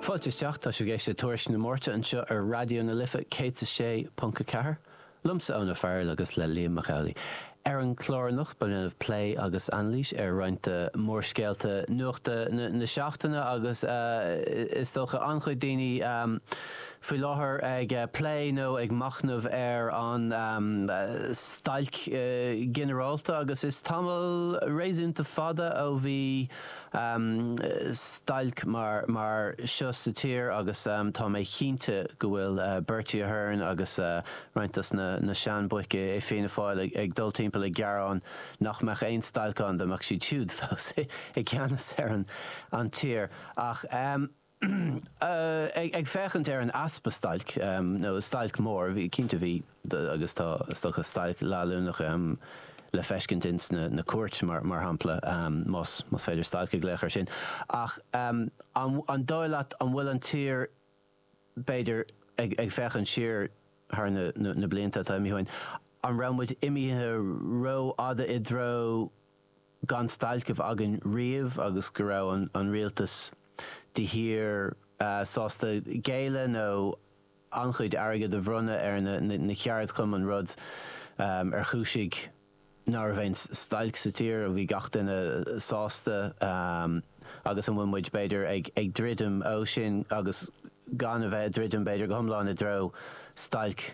Fáilte isteach, tá sibh ag éisteacht le Tuairisc na Máirte anseo ar Raidió na Life 106.4, liomsa Eoin Farrell agus le Liam Mac Amhlaigh. Ar an chlár anocht beidh muid ag déanamh plé agus anailís ar roinnt de mhórscéalta nuachta na seachtaine agus is dócha an-chuid daoine faoi láthair ag plé nó ag machnamh ar an stailc ghinearálta agus is tamall réasúnta fada ó bhí stailc mar mar seo sa tír agus tá mé cinnte go bhfuil Bertie Ahern agus roinnt dos na sean boic i Fianna Fáil ag dul timpeall ag gearán nach mbeadh aon stailc ann dá mbeadh siad siúd fós i gceannas ar an tír ach Ag féachaint ar an easpa stailc, nó stailc mhór, bhí, cinnte bhí agus tá is dócha stailc leanúnach le feiscint ins na cúirteanna mar shampla, más féidir stailc a ghlaoch ar sin, ach an dóigh leat an bhfuil an tír, b'fhéidir ag féachaint siar thar na blianta atá imithe uainn, an raibh muid imithe rófhada i dtreo, gan stailc a bheith againn riamh agus go raibh an rialtas de shíor sásta géilleadh nó an-chuid airgid a bhronnadh ar na ceardchumainn, rud ar chúisigh nach raibh aon stailc sa tír, bhí gach duine sásta agus an bhfuil muid, b'fhéidir, ag druidim ó sin agus gan a bheith ag druidim, b'fhéidir, go hiomlán i dtreo stailc?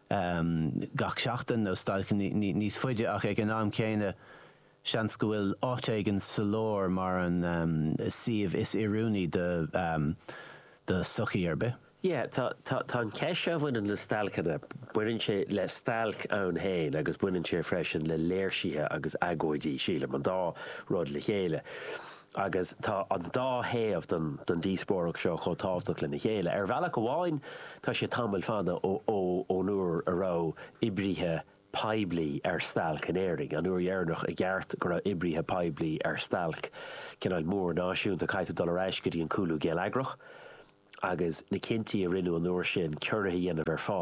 gach seachtain nó stailc níos faide ach ag an am céanna seans go bhfuil áit éigin sa lár mar an suíomh is oiriúnaí do do sochaí ar bith. Yeah, tá, tá, tá an cheist seo a bhaineann le stailceanna, baineann sé le stailc ann féin agus baineann sé freisin le léirsithe agus agóidí, sílim, an dá rud le chéile. agus tá an dá thaobh den díospóireacht seo chomh tábhachtach lena chéile. Ar bhealach amháin, tá sé tamall fada ón uair a raibh oibrithe poiblí ar stailc in Éirinn, an uair dheireanach i gceart go raibh oibrithe poiblí ar stailc, cineál mór náisiúnta, caithfidh tú dul ar ais go dtí an cúlú geilleagrach agus na cinntí a rinneadh an uair sin, ciorruithe a dhéanamh ar phá.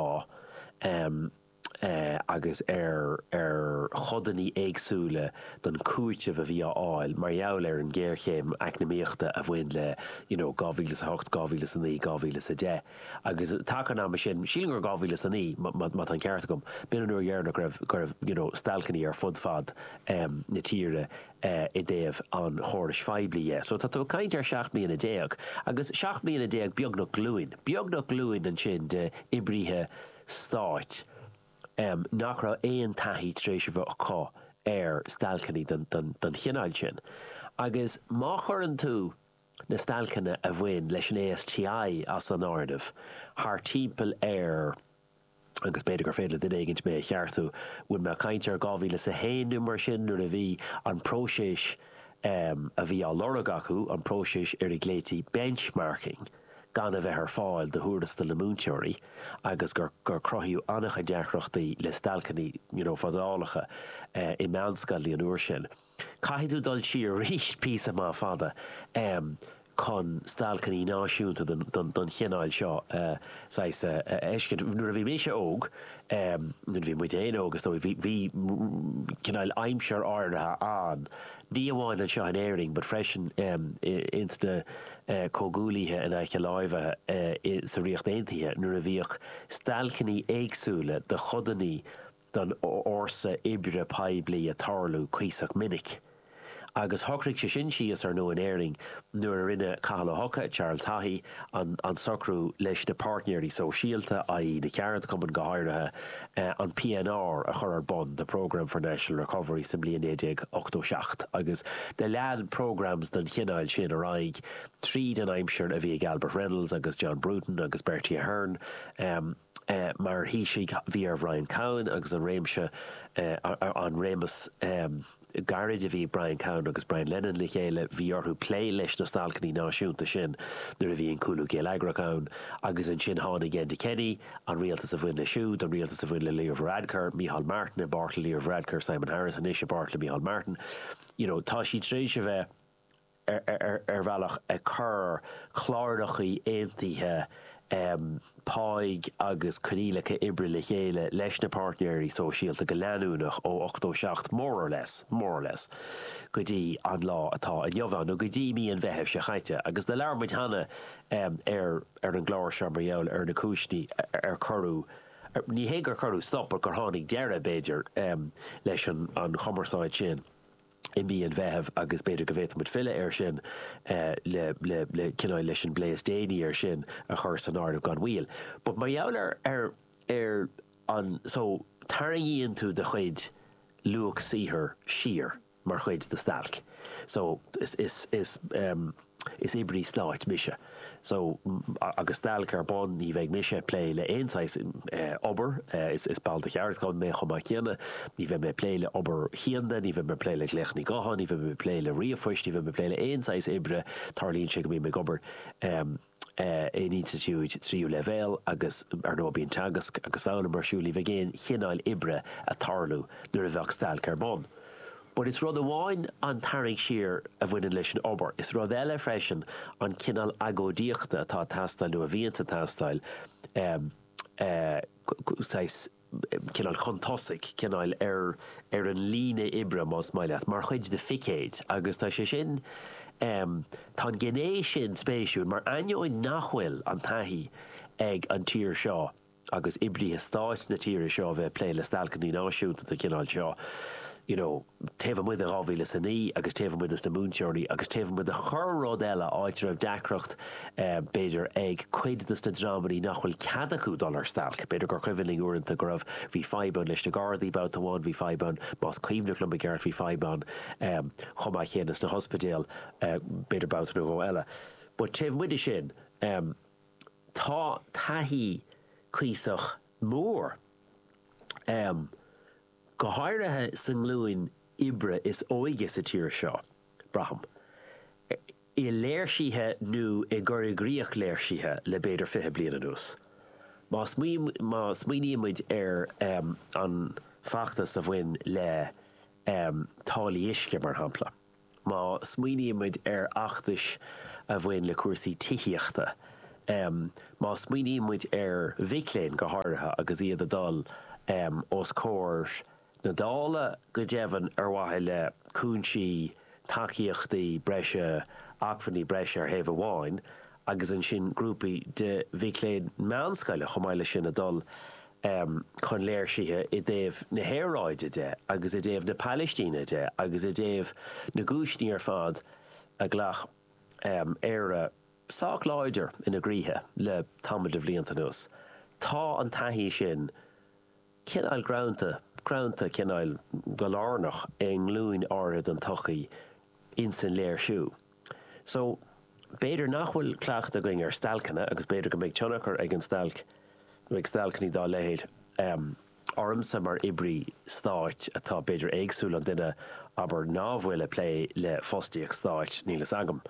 agus ar ar chodanna éagsúla den chúiteamh a bhí á fháil mar gheall ar an ghéarchéim eacnamaíochta a bhain le you know 2008, 2009, 2010 agus taca an ama sin, sílim gur 2009 má má tá an ceart agam, b'in an uair dheireanach go raibh go raibh you know stailceanna ar fud fad em na tíre eh i dtaobh an chórais phoiblí dhe. So tá tú ag caint ar sheacht mbliana déag agus seacht mbliana déag beagnach glúin, beagnach glúin ansin de oibrithe stáit, nach raibh aon taithí tar éis a bheith acu ar stailceanna den chineál sin. Agus má chuireann tú na stailceanna a bhain leis an ASTI as an áireamh, thart timpeall ar, agus b'fhéidir gur féidir le duine éigin mé a cheartú, an bhfuil mé ag caint ar 2001 nó mar sin nuair a bhí an próiseas a bhí á lorg acu, an próiseas ar a ghlaoití 'benchmarking', gan a bheith ar fáil do thuarastail na múinteoirí agus gur gur cruthaíodh an-chuid deacrachtaí le stailceanna you know fadálacha i meánscoileanna an uair sin. Caithfidh tú dul siar arís píosa maith fada em chun stailceanna náisiúnta den den den chineál seo a saghas a a fheiscint. Nuair a bhí mise óg em nuair a bhí muid féin óg is dóigh bhí bhí cineál aimsir áirithe ann ní amháin anseo in Éirinn but freisin em ins na comhghuaillithe in aice láimhe sa Ríocht Aontaithe nuair a bhíodh stailceanna éagsúla de chodanna den fhórsa oibre poiblí ag tarlú cuíosach minic. Agus shocraigh sé sin síos, ar ndóigh, in Éirinn nuair a rinne Cathal Ó hEochaidh, Charles Haughey, an socrú leis na páirtnéirí sóisialta, i.e. na ceardchumainn go háirithe, an PNR a chur ar bun, the Programme for National Recovery, sa mbliain 1987 agus do lean programs den chineál sin ar aghaidh tríd an aimsir a bhí ag Albert Reynolds agus John Bruton agus Bertie Ahern mar Thaoisigh. Bhí ar Bhrian Cowen agus an réimse, an réimeas. Gairid a bhí Brian Cowen agus Brian Lenihan le chéile. Bhí orthu plé leis na stailceanna náisiúnta sin nuair a bhí an cúlú geilleagrach ann. Agus ansin tháinig Enda Kenny, an rialtas a bhain leis siúd, an rialtas a bhain le Leo Varadkar, Micheál Martin, i bpáirt le Leo Varadkar, Simon Harris anois, i bpáirt le Micheál Martin. You know, tá siad tar éis a bheith. ar bhealach ag cur clárachaí aontaithe páigh agus coinníollacha oibre le chéile leis na páirtnéirí sóisialta go leanúnach ó 87 more or less, more or less, go dtí an lá atá inniu ann, nó go dtí mí an Mheithimh seo chaite. Agus do labhair muid cheana ar an gclár seo mar gheall ar na cúiseanna ar cuireadh, ní hé gur cuireadh stop, ach gur tháinig deireadh, b'fhéidir, leis an chumarsáid sin. i mí an Mheithimh agus b'fhéidir go bhféadfadh muid filleadh air sin le cineál leis an bplé is déanaí air sin a chur san áireamh gan mhoill. But mar gheall ar ar ar an so tarraingíonn tú do chuid luach saothair siar mar chuid de stailc so is is is. Is oibrí stáit mise so agus stailc ar bun ní bheidh mise ag plé le aon saghas obair, is ball de cheardchumann mé chomh maith céanna, ní bheidh mé ag plé le hobair chianda, ní bheidh mé ag plé le glaochanna gutháin, ní bheidh mé ag plé le ríomhphoist, ní bheidh mé ag plé le aon saghas oibre, tarlaíonn sé go mbím ag obair in institiúid tríú leibhéal agus ar ndóigh bíonn teagasc agus foghlaim ar siúl, ní bheidh aon chineáil oibre ag tarlú nuair a bheadh stailc ar bun. But is rud amháin an tarraingt siar a bhaineann leis an obair, is rud eile freisin an cineál agóidíochta atá ag teastáil nó a bhíonns ag teastáil, saghas, cineál chun tosaigh, cineál ar ar an líne oibre más maith leat, mar chuid de phicéid agus tá sé sin, tá an gné sin spéisiúil mar ainneoin nach bhfuil an taithí ag an tír seo agus oibrithe stáit na tíre seo a bheith ag plé le stailceanna náisiúnta den chineál seo, you know taobh amuigh de dhá mhíle is a naoi agus taobh amuigh dos na múinteoirí agus taobh amuigh de chorr rud eile, áit a raibh deacracht b'fhéidir ag cuid dos na dreamannaí nach bhfuil cead acu dul ar stailc. B'fhéidir gur cuimhin linn uaireanta go raibh, bhí fadhb ann leis na gardaí babhta amháin, bhí fadhb ann, más cuimhneach liom i gceart, bhí fadhb ann chomh maith céanna sna hospidéil b'fhéidir babhta nó dhó eile. But taobh amuigh de sin, Tá taithí cuíosach mór, go háirithe sa nglúin oibre is óige sa tír seo, braithim, i léirsithe nó i gcur i gcrích léirsithe le b'fhéidir fiche bliain anuas. Má smaoinímid ar an bhfeachtas a bhain le táillí uisce, mar shampla, Má smaoinímid ar fheachtais a bhain le cúrsaí tithíochta, má smaoinímid ar mhic léinn go háirithe agus iad ag dul os comhair na Dála, go deimhin, ar mhaithe le cúinsí, tacaíochtaí breise, acmhainní breise ar thaobh amháin agus ansin grúpaí de mhic léinn meánscoile chomh maith leis sin ag dul chun léirsithe i dtaobh na haeráide de agus i dtaobh na Palaistíne de agus i dtaobh na gcúiseanna ar fad a ghlac Éire sách láidir ina gcroíthe le tamall de bhlianta anuas. Tá an taithí sin cineál greanta, greanta cineál go lárnach i nglúin áirithe den tsochaí insan léirsiú. So, b'fhéidir nach bhfuil cleachtadh againn ar stailceanna agus b'fhéidir go mbeidh tionchar ag an stailc nó ag stailceanna dá leithéid ormsa mar oibrí stáit atá b'fhéidir éagsúil ón duine abair ná bhfuil ag plé le fostaíocht stáit, níl a fhios agam,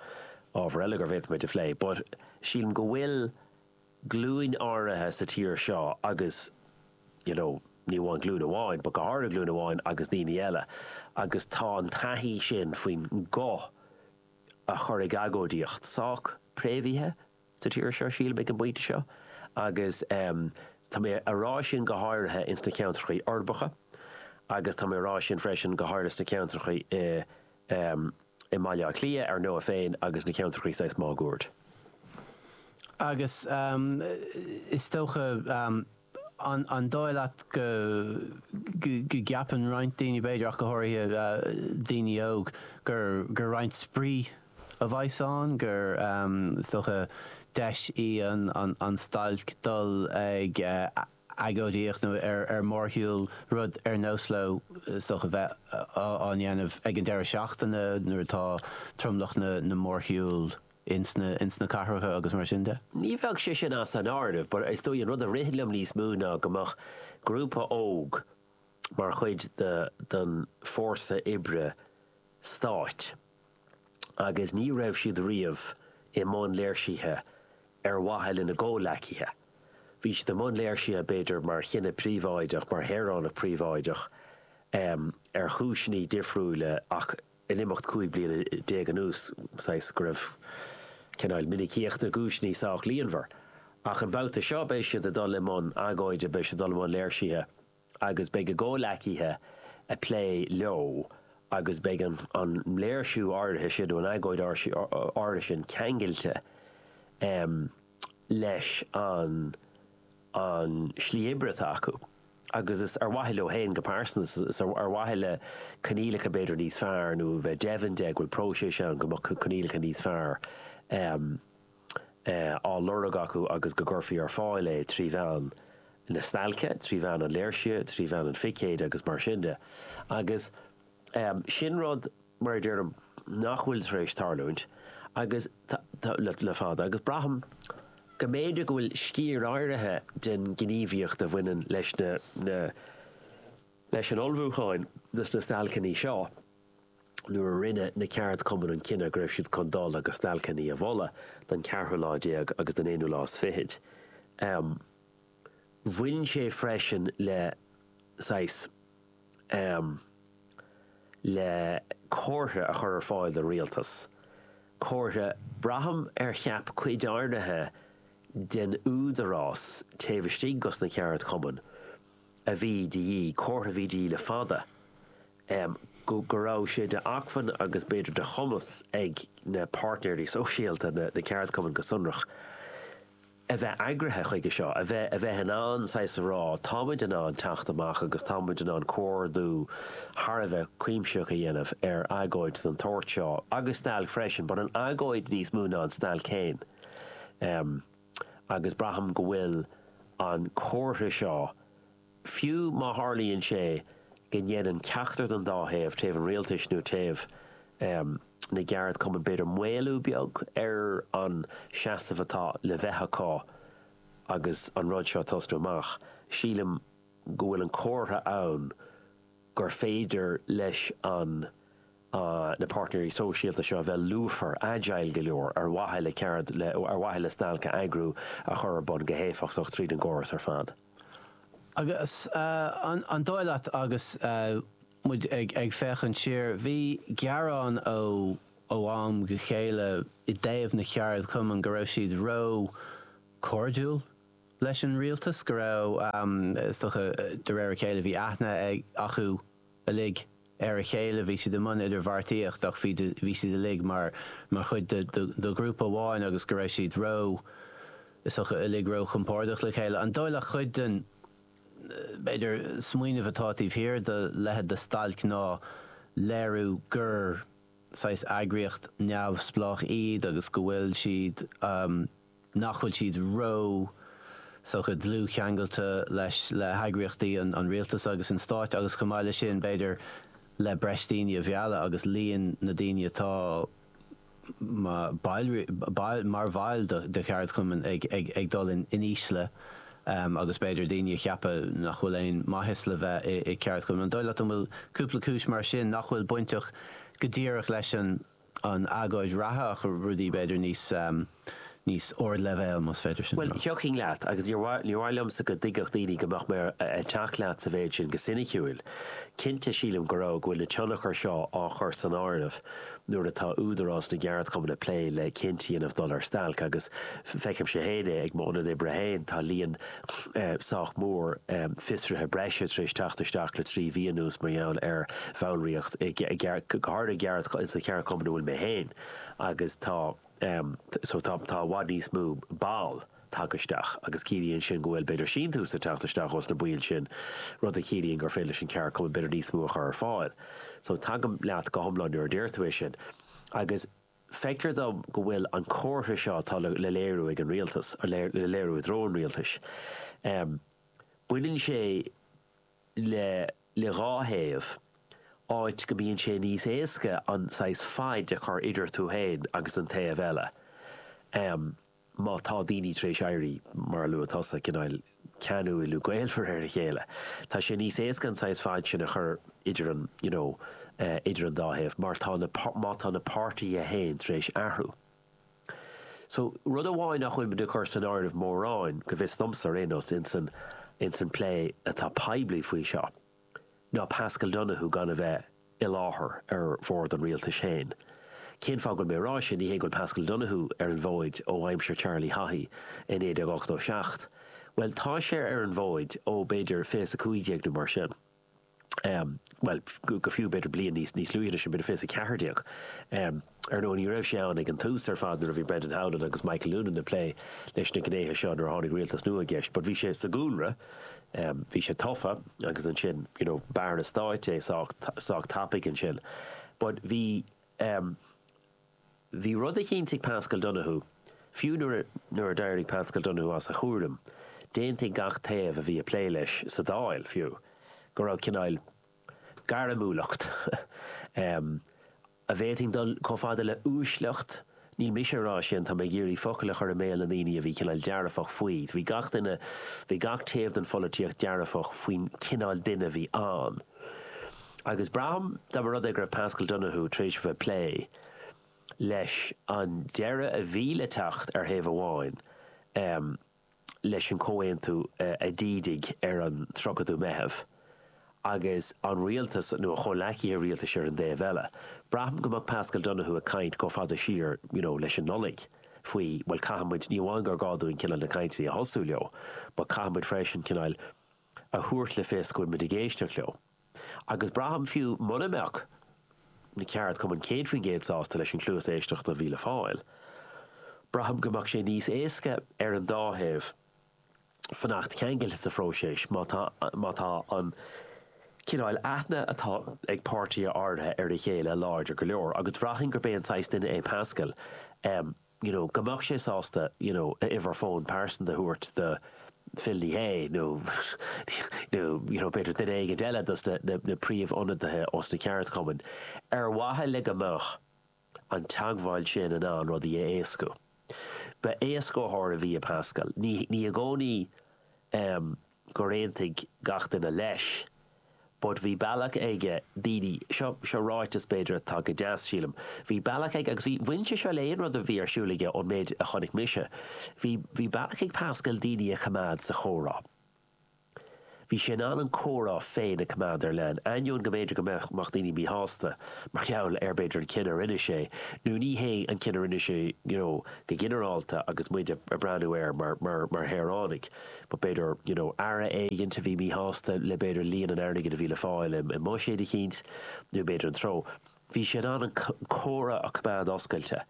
ábhar eile gur féidir muid é a phlé, but sílim go bhfuil. glúin áirithe sa tír seo agus you know ní amháin glúin amháin but go háirithe glúin amháin agus daoine eile agus tá an taithí sin faoin nguth a chur ag agóidíocht sách préamhaithe sa tír seo sílim ag an bpointe seo agus em tá mé a rá sin go háirithe ins na ceantrachaí uirbeacha agus tá mé a rá sin freisin go háirithe sna ceantrachaí i amh i mBaile Átha Cliath, ar ndóigh, féin agus na ceantrachaí saghas máguaird. Agus is dócha, an dóigh leat go gceapann roinnt daoine, b'fhéidir, ach go háirithe daoine óg, gur gur roinnt spraoi a bheas ann, gur, is dócha, deis í an an stailc dul ag agóidíocht ar mhórshiúl, rud ar nós leo is dócha bheith á ndéanamh ag an deireadh seachtaine nuair atá tromlach na mórshiúl ins na cathracha agus mar sin de. Ní bheadh sé sin as an áireamh but is dócha an rud a ritheann liom níos mó ná go mbeadh grúpa óg mar chuid den fórsa oibre stáit. agus ní raibh siad riamh i mbun léirsithe ar mhaithe lena gcomhleacaithe. Bhí siad i mbun léirsithe b'fhéidir mar dhuine príobháideach, mar shaoránach príobháideach, ar chúiseanna difriúla ach in imeacht 15 bliana anuas saghas go raibh cineál minicíochta cúiseanna sách líonmhar. Ach an babhta seo beidh siad ag dul i mbun agóide, beidh siad ag dul i mbun léirsithe. agus beidh a gcomhleacaithe i bplé leo agus beidh an léirsiú áirithe sin nó an agóid áirithe sin ceangailte leis an slí oibre atá acu agus is ar mhaithe leo féin go pearsanta, is ar mhaithe le coinníollacha b'fhéidir níos fearr nó a bheith deimhin de go bhfuil próiseas ann go mbeadh coinníollacha níos fearr. á lorg acu agus go gcuirfí ar fáil é trí mheán na stailce, trí mheán an léirsithe, trí mheán an phicéid agus mar sin de. Agus sin rud, mar a deirim, nach bhfuil tar éis tarlúint agus le fada agus braithim go mb'fhéidir go bhfuil sciar áirithe den ghníomhaíocht a bhaineann leis na leis an ullmhúcháin dos na stailceanna seo, nuair a rinne na ceardchumainn an cinneadh go raibh siad chun dul agus stailceanna a mholadh don cheathrú lá déag agus don aonú lá is fichid. Bhain sé freisin le saghas le comhartha a chur ar fáil don rialtas, comhartha, braithim, ar cheap cuid áirithe den údarás taobh istigh des na ceardchumainn. a bhí de dhíth, comhartha a bhí de dhíth le fada, go raibh sé d'acmhainn agus b'fhéidir de chumas ag na páirtnéirí sóisialta, na ceardchumainn go sonrach, a bheith eagraithe chuige seo, a bheith in ann saghas a rá, táimid in ann teacht amach agus táimid in ann comhordú thar a bheith cuimsitheach a dhéanamh ar agóid den tsórt seo agus stailc freisin, but an agóid níos mó ná an stailc féin. agus braithim go bhfuil an comhartha seo, fiú má tharlaíonn sé go ndéanann ceachtar den dá thaobh, taobh an rialtais nó taobh na gceardchumann, b'fhéidir, maolú beag ar an seasamh atá le bheith acu agus an rud seo ag tosnú amach, sílim go bhfuil an comhartha ann gur féidir leis an. na páirtnéirí sóisialta seo a bheith lúfar, agile go leor ar mhaithe le ceard le ar mhaithe le stailc a eagrú a chur ar bun go héifeachtach tríd an gcóras ar fad. Agus an dóigh leat agus muid ag féachaint siar, bhí gearán ó ó am go chéile i dtaobh na cheardchumann go raibh siad ró cairdiúil leis an rialtas, go raibh is dócha de réir a chéile bhí aithne acu uilig ar a chéile, bhí siad i mbun idirbheartaíocht ach bhí bhí siad uilig mar mar chuid de ghrúpa amháin agus go raibh siad ró, is dócha, uilig ró-chompordach le chéile. An dóigh leat cuid den, b'fhéidir, smaoineamh atá taobh thiar de leithéid de stailc ná léiriú gur saghas eagraíocht neamhspleách iad agus go bhfuil siad, nach bhfuil siad ró, is dócha, dlúthcheangailte leis, le heagraíochtaí an rialtais agus an stáit agus chomh maith leis sin, b'fhéidir, le breis daoine a mhealladh agus líon na daoine atá mar bhaill de cheardchumainn ag dul in ísle agus b'fhéidir daoine ag ceapadh nach bhfuil aon maitheas le bheith i gceardchumann. An dóigh leat an bhfuil cúpla cúis mar sin nach bhfuil bainteach go díreach leis an. an agóid reatha ach rudaí b'fhéidir níos níos ardleibhéal más féidir sin a rá. Bhuel, thiocfainn leat agus níor mhaith níor mhaith liomsa go dtuigfeadh daoine go mbeadh mé ag teacht leat sa mhéid sin go ciniciúil. Cinnte, sílim go raibh go bhfuil na tionchair seo á chur san áireamh nuair atá Údarás na gCeardchumann ag plé le cinneadh a dhéanamh dul ar stailc agus feicimse féin é ag m'ionad oibre féin, tá líon sách mór fiosruithe breise tar éis teacht isteach le trí mhí anuas mar gheall ar bhallraíocht i go háirithe sa cheardchumann a bhfuil mé féin ann agus tá so tá tá i bhfad níos mó ball tagtha isteach agus ciallaíonn sin go bhfuil b'fhéidir síntiús ag teacht isteach ós na baill sin rud a chiallaíonn gur féidir leis an ceardchumann b'fhéidir níos mó a chur ar fáil so tagaim leat go hiomlán nuair a deir tú é sin agus Feictear dom go bhfuil an comhartha seo atá le léiriú ag an Rialtas, le léiriú i dtreo an Rialtais, baineann sé le dhá thaobh, áit go mbíonn sé níos éasca an saghas fad a chur idir tú féin agus an taobh eile. má tá daoine tar éis éirí, mar a luaigh tusa, cineál ceanúil gaolmhar ar a chéile, tá sé níos éasca an saghas fad sin a chur idir an, you know, idir an dá thaobh mar tá na, má tá na páirtithe féin tar éis athrú. So, rud amháin nach bhfuilimid ag cur san áireamh mórán, go bhfios domsa ar aon nós, in san, in san plé atá poiblí faoi seo, ná Paschal Donohoe gan a bheith i láthair ar bhord an rialtais féin. Cén fáth go bhfuil mé ag rá sin? Ní hé go bhfuil Paschal Donohoe ar an bhfóid ó aimsir Charlie Haughey i 1987. Bhuel, tá sé ar an bhfóid ó, b'fhéidir, 2015 nó mar sin. Bhuel, go fiú, b'fhéidir, bliain níos luaithe ná sin, b'fhéidir 2014. Ar ndóigh, ní raibh sé ann ag an tús ar fad nuair a bhí Brendan Howlin agus Michael Noonan ag plé leis na gnéithe seo nuair a tháinig rialtas nua i gceist but bhí sé sa gcúlra, bhí sé tofa agus ansin you know b'Aire Stáit é sách tapaidh ansin but bhí bhí rud eicínt ag Paschal Donohoe, fiú nuair a nuair a d'éirigh Paschal Donohoe as a chúram, d'aontaigh gach taobh a bhí ag plé leis sa Dáil fiú go raibh cineál gairmiúlacht an bhféadfainn dul chomh fada le uaisleacht, níl mise ag rá sin, tá mé ag iarraidh focail a chur i mbéal na ndaoine a bhí cineál dearfach faoi, bhí gach duine, bhí gach taobh den pholaitíocht dearfach faoin chineál duine a bhí ann. Agus braithim, dá mba rud é go raibh Paschal Donohoe tar éis a bheith ag plé leis an deireadh a bhí le teacht ar thaobh amháin, leis an gcomhaontú a d'ídigh ar an 30ú Meitheamh, agus an rialtas, nó a chomhleacaithe rialtais ar an dtaobh eile. Braithim go mbeadh Paschal Donohoe ag caint chomh fada siar, you know, leis an Nollaig faoi, bhuel, caithfidh muid, ní amháin gur gá dúinn cineál na cainteanna a thosú leo, but caithfidh muid freisin cineál, a thabhairt le fios go bhfuil muid ag éisteacht leo, agus braithim fiú mura mbeadh na ceardchumainn 100% sásta leis an chluas éisteachta a bhí le fáil, braithim go mbeadh sé níos éasca ar an dá thaobh fanacht ceangailte sa phróiseas má tá an cineál aithne atá ag páirtithe áirithe ar a chéile láidir go leor, agus bhraithfinn gurb é an saghas duine é Paschal a you know go mbeadh sé sásta you know a uimhir fóin pearsanta a thabhairt do Phil Ní Sheaghdha nó nó you know b'fhéidir duine éigint eile dos na na na príomh-ionadaithe os na ceardchumainn ar mhaithe le go mbeadh an teagmháil sin in ann rudaí a éascú. Ba éascaitheoir a bhí i Paschal. Ní ní i gcónaí eh. gur aontaigh gach duine leis but bhí bealach aige daoine seo, seo ráiteas b'fhéidir atá go deas, sílim, bhí bealach aige agus bhí bhain sé seo le aon rud a bhí ar siúl aige ón méid a chonaic mise, bhí, bhí bealach ag Pascal daoine a choimeád sa chomhrá. Bhí sé in ann an comhrá féin a coimeád ar leanúint, ainneoin go mb'fhéidir go mbeadh, mbeadh daoine míshásta mar gheall ar b'fhéidir an cinneadh a rinne sé nó ní hé an cinneadh a rinne sé you know go ginearálta agus muid a' breathnú air mar, mar, mar shaoránaigh. b'fhéidir, you know aire éigint a bhí míshásta le b'fhéidir líon an airgid a bhí le fáil i mbuiséad eicínt nó b'fhéidir an treo. Bhí sé in ann an comhrá a choimeád oscailte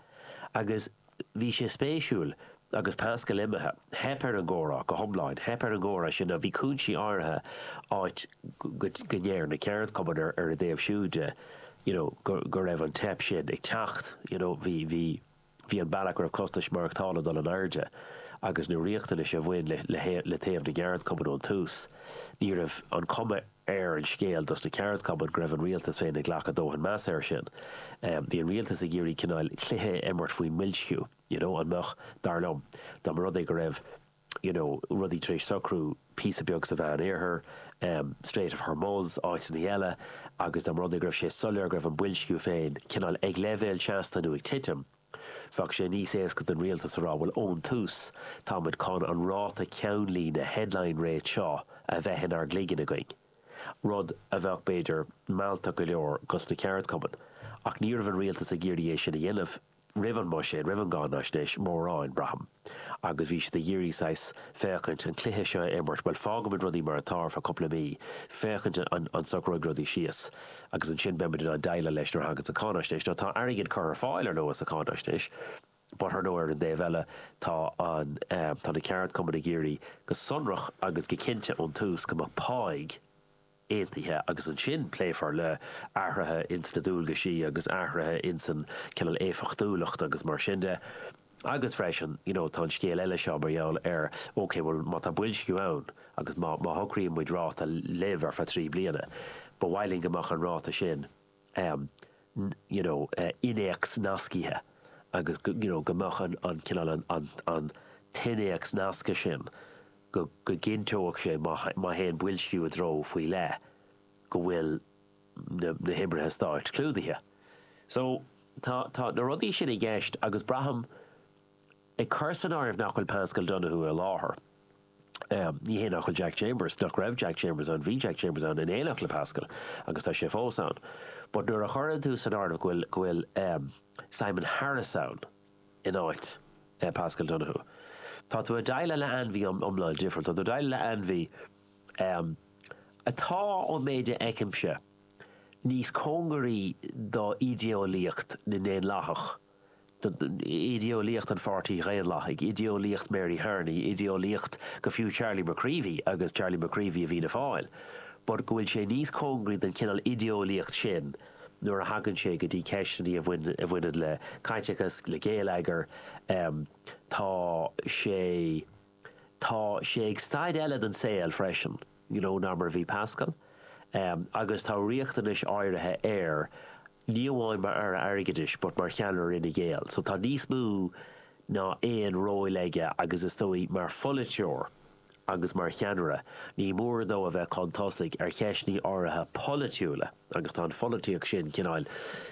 agus bhí sé spéisiúil agus Paschal imithe, theip ar an gcomhrá go hiomlán, theip ar an gcomhrá sin a bhí cúinsí áirithe áit go ndeir na ceardchumainn ar a dtaobh siúd de you know go raibh an teip sin ag teacht you know bhí, bhí. Bhí an bealach go raibh costais mhaireachtála ag dul in airde agus na riachtanais a bhain le taobh na gceardchumann ón tús, ní raibh an chuma ar an scéal dos na ceardchumainn go raibh an rialtas féin ag glacadh dóthain measa air sin. Bhí an rialtas ag iarraidh cineáil cluiche a imirt faoin mboilsciú, you know, an mbeadh, dar liom, dá mba rud é go raibh, you know rudaí tar éis socrú píosa beag sa Mheán Oirthear, em Strait of Hormuz, áiteannaí eile agus dá mba rud é go raibh sé soiléir go raibh an boilsciú féin cineál ag leibhéal seasta nó ag titim, bheadh sé níos éasca don rialtas a rá bhuel ón tús táimid chun an ráta ceannlíne, headline rate, seo a bheith inár gcloigeann againn. Rud a bheadh b'fhéidir mealltach go leor dos na ceardchumainn ach ní raibh an rialtas ag iarraidh é sin a dhéanamh, roimh an mbuiséad, roimh an gcáinaisnéis, mórán, braithim, agus bhí siad ag iarraidh saghas féachaint, an cluiche seo a imirt, bhuel, fágfaimid rudaí mar atá ar feadh cúpla mí, féachaint an an socróidh rudaí síos, agus ansin beimid in ann deighleáil leis nuair a thaganns an cháinaisnéis. Now, tá airgead curtha ar fáil, ar ndóigh, sa cháinaisnéis, but, ar ndóigh, ar an dtaobh eile, tá an, tá na ceardchumainn ag iarraidh go sonrach agus go cinnte ón tús go mbeadh pá, Aontaithe agus ansin pléifear le athruithe ins na dualgaisí agus athruithe ins an cineál éifeachtúlacht agus mar sin de agus freisin you know tá an scéal eile seo mar gheall ar ok bhuel má tá boilsciú ann agus má shocraíonn muid ráta libh ar feadh trí bliana ba mhaith linn go mbeadh an ráta sin you know innéacsnascaithe agus go you know go mbeadh an an cineál an an an t-innéacsnascadh sin go go gcinnteodh sé má má théann boilsciú i dtreo faoi leith go bhfuil na na hoibrithe stáit clúdaithe so tá tá na rudaí sin i gceist agus braithim Ag cur san áireamh nach bhfuil Paschal Donohoe i láthair, ní hé nach bhfuil Jack Chambers, nach raibh Jack Chambers ann, bhí Jack Chambers ann in éineacht le Paschal agus tá sé fós ann, but nuair a chuireann tú san áireamh go bhfuil, go bhfuil Simon Harris ann in áit Paschal Donohoe, tá tú ag déileáil le ainmhí iomlán difriúil, tá tú ag déileáil le ainmhí atá, ón méid a fheicimse, níos cóngaraí do idé-eolaíocht na nDaonlathach. idéeolaíocht an Pháirtí Dhaonlathaigh, idéeolaíocht Mary Harney, idéeolaíocht go fiú Charlie McCreevy, agus Charlie McCreevy i bhFianna Fáil, but go bhfuil sé níos cóngaraí don chineál idéeolaíocht sin nuair a thagann sé go dtí ceisteannaí a bhaineann le caiteachas, le géilleagar. Tá sé, tá sé ag staid eile den saol freisin, you know, ná mar a bhí Paschal agus tá riachtanais áirithe air ní amháin mar Aire Airgeadais but mar cheannaire Fhine Gael so tá níos mó ná aon ról aige agus is dóigh, mar pholaiteoir agus mar cheannaire ní mór dó a bheith chun tosaigh ar cheisteanna áirithe polaitiúla agus tá an pholaitíocht sin cineál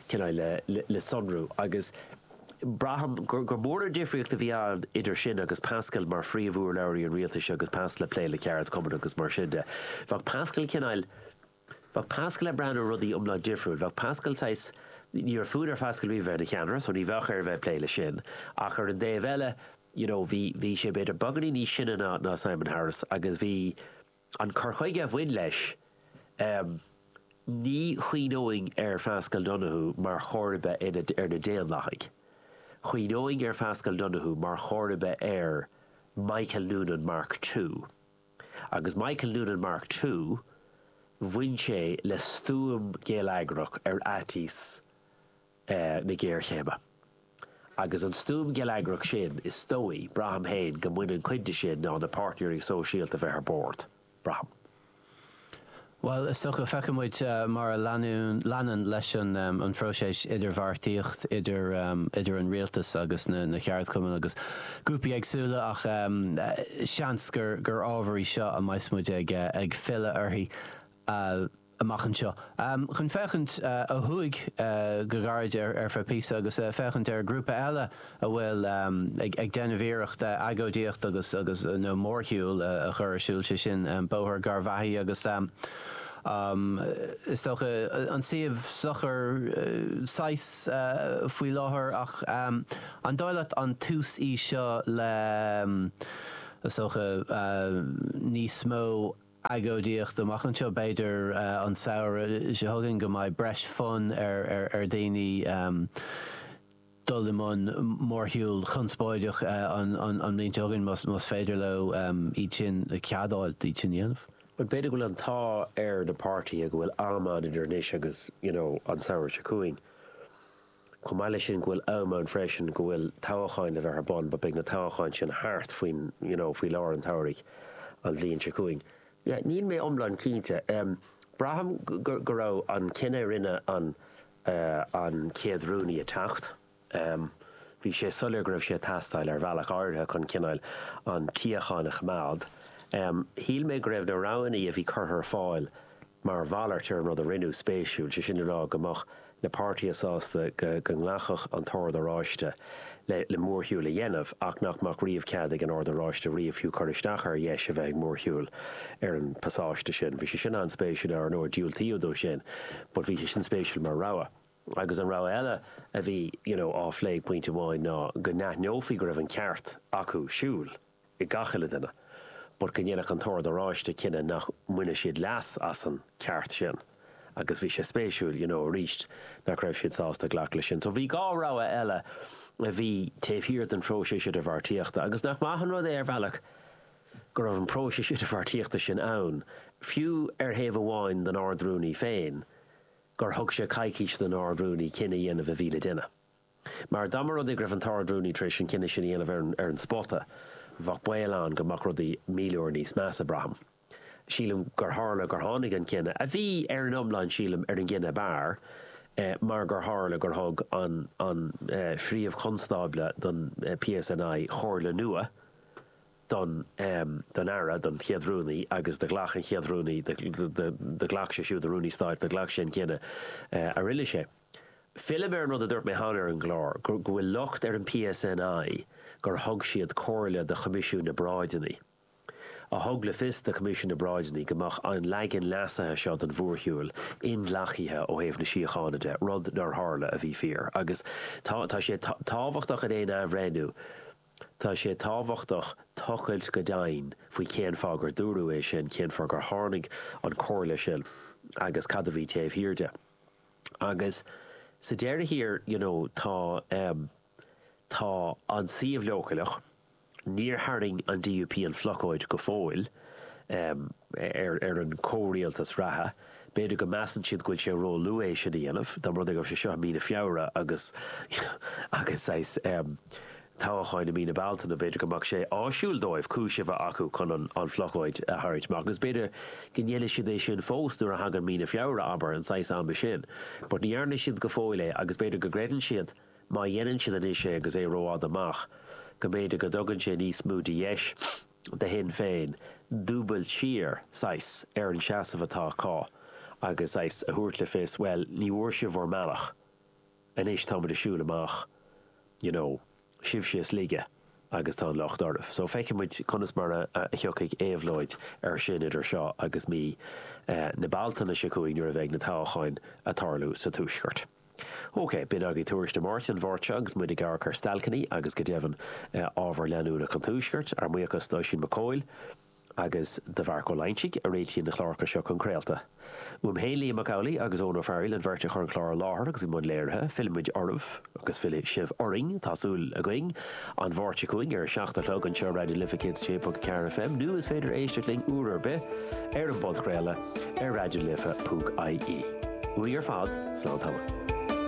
cineál le sonrú agus braithim gur gur mór an difríocht a bhí ann idir sin agus Paschal mar phríomhurlabhraí an rialtais agus Paschal ag plé le ceardchumainn agus mar sin de bheadh Paschal cineál Bheadh Paschal ag breathnú ar rudaí iomlán difriúil. Bheadh Paschal saghas, ní raibh fonn ar Phaschal riamh a bheith ina cheannaire so ní bheadh air a bheith ag plé leis sin ach ar an dtaobh eile you know bhí, bhí sé b'fhéidir beagáinín níos sine ná, ná Simon Harris agus bhí an cur chuige a bhain leis ehm ní chuimhneoinn ar Phaschal Donohoe mar chomharba ar na, ar na Daonlathaigh. Chuimhneoinn ar Phaschal Donohoe mar chomharba ar Michael Noonan Mark Two. Agus Michael Noonan Mark Two, bhain sé le stuaim gheilleagrach ar fhaitíos na géarchéime. Agus an stuaim gheilleagrach sin, is dóigh, braithim féin, go mbaineann cuid de sin le na páirtnéirí sóisialta bheith ar bord. Braithim. Bhuel, is dócha, feicfidh muid mar a leanann, leis an phróiseas idirbheartaíocht idir an Rialtas agus na ceardchumainn agus grúpaí éagsúla ach seans gur ábhar í seo a mbeidh muid ag filleadh uirthi amach anseo chun féachaint ó thuaidh go gairid ar feadh píosa agus féachaint ar ghrúpa eile a bhfuil ag déanamh iarracht agóidíocht agus, agus, nó mórshiúl a chur ar siúl, sé sin, Bóthar Gharbhachaidh agus, is dócha, an suíomh socair saghas faoi láthair ach an dóigh leat an tús í seo le, is dócha, níos mó agóidíocht amach anseo, b'fhéidir, an samhradh seo chugainn go mbeidh breis fonn ar, ar, ar dhaoine, dul i mbun mórshiúl conspóideach an bhliain seo chugainn más féidir leo iad sin a cheadú, iad sin a dhéanamh. Bhuel, b'fhéidir go bhfuil an t-ádh ar na páirtithe go bhfuil am ann idir anois agus, you know, an samhradh seo chugainn. Chomh maith leis sin, go bhfuil am ann freisin go bhfuil toghcháin le bheith ar bun but beidh na toghcháin sin thart faoin, you know, faoi lár an tsamhraidh an bhliain seo chugainn. Yeah, níl mé iomlán cinnte. Braithim go raibh an cinneadh a rinne an an chéad Rúnaí ag teacht, bhí sé soiléir go raibh sé ag teastáil ar bhealach áirithe chun cineál an tsíocháin a choimeád. Shíl mé go raibh na roghanna a bhí curtha ar fáil mar mhalairt ar an rud a rinneadh spéisiúil, sé sin le rá go mbeadh na páirtithe sásta go nglacfadh an tOrd Oráiste le mórshiúl a dhéanamh ach nach mbeadh riamh cead ag an Ord Oráiste riamh fiú cur isteach ar dheis a bheith ag mórshiúl ar an bpasáiste sin. Bhí sé sin an-spéisiúil ar ndóigh, diúltaíodh dó sin but bhí sé sin spéisiúil mar rogha. Agus an rogha eile a bhí you know á phlé ag pointe amháin ná go n-aithneofaí go raibh an ceart acu siúl, ag gach uile duine, but go ndéanfadh an tOrd Oráiste cinneadh nach mbaineadh siad leas as an ceart sin agus bhí sé spéisiúil, you know, arís nach raibh siad sásta glacadh leis sin. So bhí dhá rogha eile a bhí taobh thiar den phróiseas idirbheartaíochta agus nach maith an rud é ar bhealach go raibh an próiseas idirbheartaíochta sin ann, fiú ar thaobh amháin don Ard-Rúnaí féin, gur thug sé coicís don Ard-Rúnaí cinneadh a dhéanamh a bhí le déanamh. Mar dá mba rud é go raibh an tArd-Rúnaí tar éis an cinneadh sin a dhéanamh ar an spota, bheadh baol ann go mbeadh rudaí míle uair níos measa, braithim. Sílim gur tharla gur tháinig an cinneadh, a bhí, ar an iomlán sílim, ar an gcinneadh ab fhearr, mar gur tharla gur thug an an Príomh-Chonstábla don PSNI comhairle nua don don Aire, don Chéad Rúnaí, agus do ghlac an Chéad Rúnaí, do ghlac sé siúd, an Rúnaí Stáit, do ghlac sé an cinneadh a rinne sé. Fillim ar an rud a dúirt mé cheana ar an gclár, go bhfuil locht ar an PSNI gur thug siad comhairle do Choimisiún na bParáideanna, a thug le fios do Choimisiún na bParáideanna go mbeadh an leagan leasaithe seo den mhórshiúl inghlactha ó thaobh na síochána de, rud nár tharla, a bhí fíor. Agus tá, tá sé tábhachtach in aon athbhreithniú, tá sé tábhachtach tochailt go doimhin faoi cén fáth gur dúradh é sin, cén fáth gur tháinig an comhairle sin agus cad a bhí taobh thiar de. Agus sa deireadh thiar, you know, tá, em, tá an suíomh leochaileach, níor tharraing an DUP an phlocáid go fóill, em, ar, ar an chomhrialtas reatha. B'fhéidir go measann siad go bhfuil sé róluath é sin a dhéanamh, dá mba rud é go raibh sé seo i mí na Feabhra agus, agus saghas, em, toghcháin i mí na Bealtaine, b'fhéidir go mbeadh sé áisiúil dóibh cúis a bheith acu chun an phlocóid a tharraingt amach agus b'fhéidir go ndéanfaidh siad é sin fós nuair a thagann mí na Feabhra, abair, an saghas ama sin. But ní dhearna siad go fóill é agus b'fhéidir go gcreideann siad má dhéanann siad anois é agus é rófhada amach, go mb'fhéidir go dtugann sé níos mó de dheis do Shinn Féin dúbailt siar, saghas, ar an seasamh atá acu agus, saghas, a thabhairt le fios, bhuel, ní bhfuair sibh bhur mbealach. anois táimid ag siúl amach you know sibhse is laige agus tá an locht oraibh so feicfidh muid conas mar a thiocfaidh éabhlóid air sin idir seo agus mí na Bealtaine seo chugainn nuair a bheidh na toghcháin a' tarlú sa tuaisceart. Ok, b'in agaibh tuairisc na Máirte, an Mháirt seo agus muid ag amharc ar stailceanna agus go deimhin ábhar leanúnach an tuaiscirt, ár mbuíochas d'Oisín Mac Cathail. agus do Mharc Ó Loingsigh a réitíonn na cláracha seo chun craolta. Uaim féin, Liam Mac Amhlaigh agus Eoin Ó Fearghaíl an bheirt a chuir an clár i láthair agus i mbun léirithe. Fillfimid oraibh agus fillfidh sibh orainn, tá súil againn, An Mháirt seo chugainn ar a seacht a chlog anseo ar Raidió na Life 106.4 FM nó is féidir éisteacht linn uair ar bith ar an bpodchraoladh ar raidionalife.ie. Uainn ar fad, slán tamall.